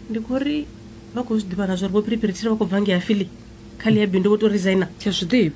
ndi khou ri vha khou zwi ḓivha na zwa uri vho phiriphiri tshiri vha khou bva ngei afili kha ḽi ya bindu vho to resigner tsha zwi ḓivha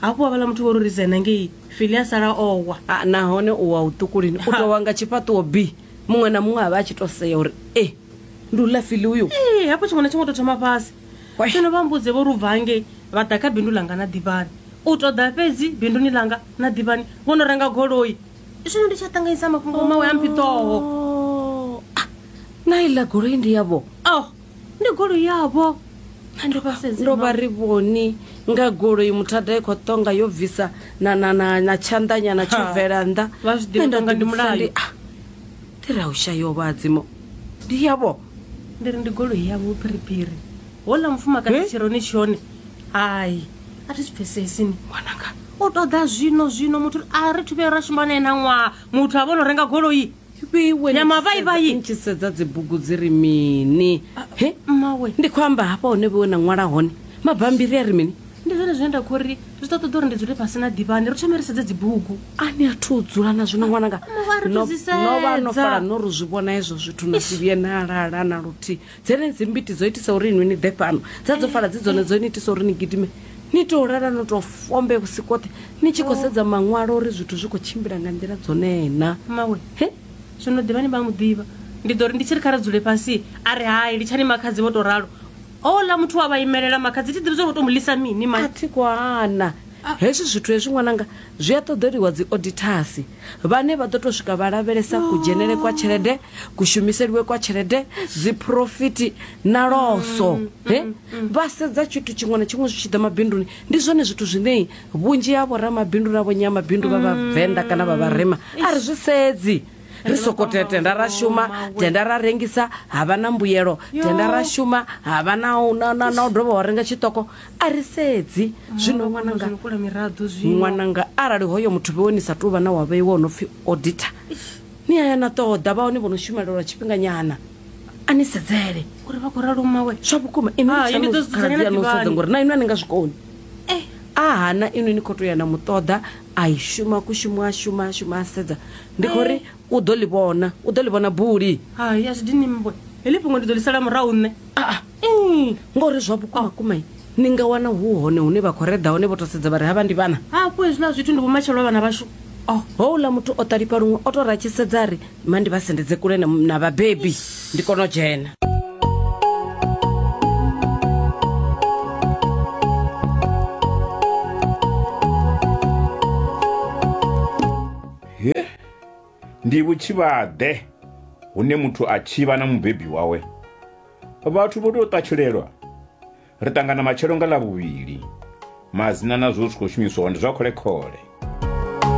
hafhu wa vhala muthu vho ro resigner ngei fili a sala owa Ah, nahone u wa u ṱukulini u tou wa nga tshifhaṱuwo bi muṅwe na muṅwe a vha a tshi to sea uri e ndi u ḽa fili uyo ee hafho tshiṅwe na tshiṅwe to thoma fhasi Wai. zwino vha mbudze vho ri u bva ngei vha ḓa kha bindu langa na ḓivhani u tou ḓa fhedzi binduni langa na ḓivhani vho no renga goloi zwino ndi tsha ṱanganyisa mafhungo mawe a mphiṱoho Oh, ah, na iḽa goloi ndi yavho oh ndi goloi yavho ndo vha sedze ndo vha ri vhoni nga goloi muthada i khou ṱonga yo bvisa na na na na tshanḓanyana tsho Ha, bvela nnḓa vha zwi ḓivha Nṋe nda ṱonga ndi ḓivhudzisa mulayo. ndi, ah, ndi ra u shayo vhadzimo ndi yavho ndi ri ndi goloi yavho phiriphiri hola mufumakadzi Eh? tshironi tshone hai a thi pfesesi ni mwananga u ṱoḓa zwino zwino muthu a ri thi vhuye ra shuma nae na ṅwaha muthu a vhono renga goloi ya mavaivai tshi sedza dzibugu dzi ri mini ah, he mmawe ndi khou amba hafha hone vhewe na ṅwala hone mabambiri a ri mini ndi zwone zwine nda khou ri zwi ṱoḓa ṱoḓa uri ndi dzule fhasi na ḓivhani ri thome ri sedze dzibugu a ni a thu u dzula na zwino ṅwananga ah, no vha no fala no ri zwi vhona hezwo zwithu na si vhuye na lala na luthihi Dzenedzi mbiti dzo itisa uri inwi ni ḓe fhano, dza dzo fala dzi dzone dzo ni itisa uri ni gidime ni tou lala no tou fombe vhusiku hoṱhe ni tshi khou sedza maṅwalo uri zwithu zwi khou tshimbila nga nḓila dzonee na. Mmawe, He? zwino ḓivhani vha a mu ḓivha. Ndi ḓo ri ndi tshi ri kha ri dzule fhasi, a ri hai, litshani makhadzi vho tou ralo. Houḽa muthu wa vha imelela, makhadzi thi ḓivhi zwa uri vho tou mu ḽisa mini, mai. A thi khou hana. Hezwi zwithu hezwi ṅwananga zwi a ṱoḓeliwa dzi odithasi. vhane vha ḓo tou swika vha lavhelesa kudzhenele kwa tshelede kushumiseliwe kwa tshelede dziphurofiti na loso mm, mm, he mm, vha sedza tshithu tshiṅwe na tshiṅwe zwi tshi ḓa mabinduni ndi zwone zwithu zwine vhunzhi ha vhoramabindu na vhonyamabindu vha vhavenḓa kana vha vharema a ri zwi sedzi ri soko tenda ra shuma tenda ra rengisa ha vha na mbuyelo tenda ra shuma ha vha na u dovha wa renga tshiṱoko a ri sedzi zwino ṅwananga ṅwananga arali hoyo muthu vhewe ni sa tou vha na wa vheiwa o no pfhi auditor ni aya na ṱoḓa vha hone vho no shumela lwa tshifhinganyana a ni sedzele uri vha khou ralo mmawe zwa vhukuma inokhaladzi ngori na inwe a ni nga zwikoni eh. a hana inwe ni khou tou ya na muṱoḓa a i shuma kushuma a shuma a shuma a sedza ndi khou ri eh. U ḓo ḽi vhona. U ḓo ḽi vhona buli. Hai, a zwi dini mmbwe. Heḽi fhungo ndi ḓo ḽi sala murahu nṋe. Aa! Ii! Ngori zwa vhukuma kuma i, ni nga wana hu hone hune vha khou reḓa hone vho tou sedza vha ri havha ndi vhana. Hafhu hezwiḽa zwithu ndi vhumatshelo ha vhana vhashu. Oh, houḽa muthu o ṱalifha luṅwe o tou ri a tshi sedza a ri, Ma ndi vha sendedze kule na, na vhabebi ndi kone u dzhena. Ndi vhutshivhaḓe hune muthu a tshivha na mubebi wawe. Vhathu vho tou ṱatshulelwa. Ri ṱangana matshelo nga ḽa vhuvhili. Madzina na zwo zwi khou shumiswaho ndi zwa khole-khole.